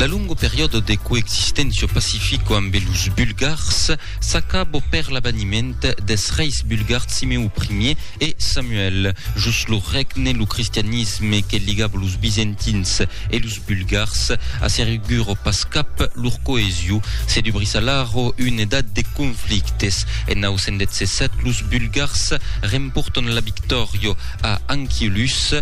La longo periodo de coexistencia pacifico ambe los Bulgars s'acabo per l'abaniment des reis bulgars Simeu I e Samuel. Jos lo regne, lo cristianisme que ligabo los Bizentins e los Bulgars asseriguro pas cap lor coesio. Se dubrís alara una edat de conflictes. En 917 los Bulgars remporton la victòria a Anchialus.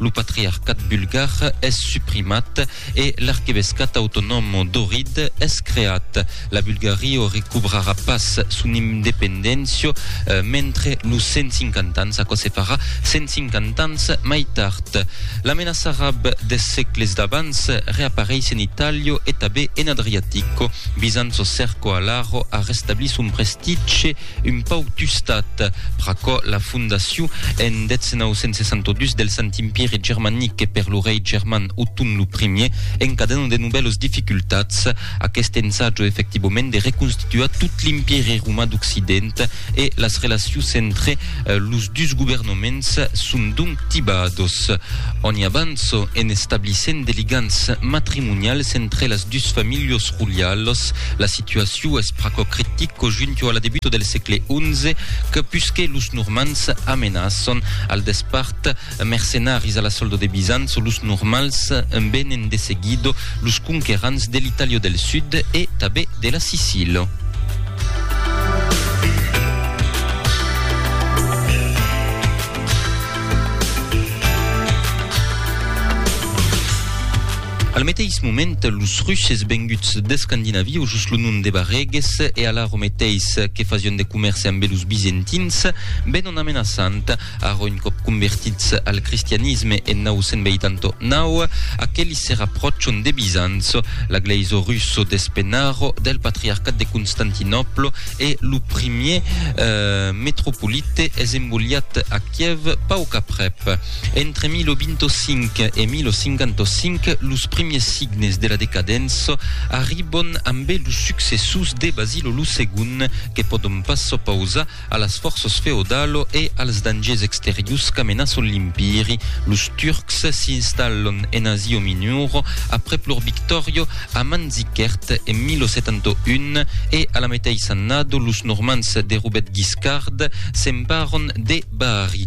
Lo patriarcat bulgar es suprimat e l'arquevescat autonòm d'Ohrid es creat. La Bulgario recobrarà pas son independéncia mentre los 150 ans, aquò se farà 150 ans mai tard. La menaça arab des sègles d'abans reapareis en Itàlia e tabé en Adriatico. Bizanço Cerco Alaro a restablit son prestitge Un pauc tustat, pr'aquò la fondacion en 1962 del Sant Impièri Germanic per lo rei german Othon lo Primier encadenant de novèlos dificultats aqueste ensàjo efectivament de reconstituar tot l'Impièri Roman d'Occident e las relacions entre los dus governaments son donc tibados en abans en establissent de ligams matrimonials entre las dus familhas roialas, la Situacion es pr'aquò critic qu'au junto a la debuta del sègle XI que pusque los Normands amenaçon al despart mercenaris a la solda de Bizanço los Normals envenen de seguido los conquerants de l'Itàlia del Sud e tabé de la Sicila. Al meteis moment, los Russes venguts d'Escandinavia, o jos lo nom de Barreges, e alara o meteis que fasián de comèrce ambe los Bizentins, venon amenaçant, ara un còp convertits al cristianisme en 989, aquelis se rapròchon de Bizanço, la glèisa russa d'Espenaro, del patriarcat de Constantinòpla, e lo primièr metropolite es embolhat a Kièv pauc aprèp. Entre 1025 e 1055, los primiers signes de la decadença arribon ambe los successors de Basilo lo Segond que pòdon pas s'opausar a las fòrças feodalo e als dangers exteriors qu'amenaçon l'Empiri. Los Turcs s'installon en Asia Minora aprèp lor victòria a Manzikert en 1071 e a la meteissa annada los Normands de Robet Guiscard s'emparon de Bari.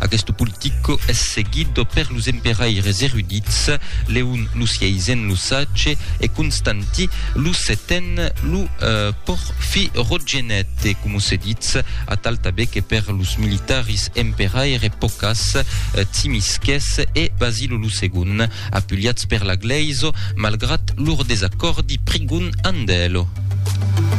Aguest politico es seguit per los emperaires erudits Leon lo Sieisen, lo Sage, e Constanti lo Seten, lo Porfirogenete, coma se ditz, atal tanben que per los militaris emperaires pocas, Tsimisces e Basilo lo Segon, apuliats per la glèisa malgrat lor desacòrdi prigon amb elo.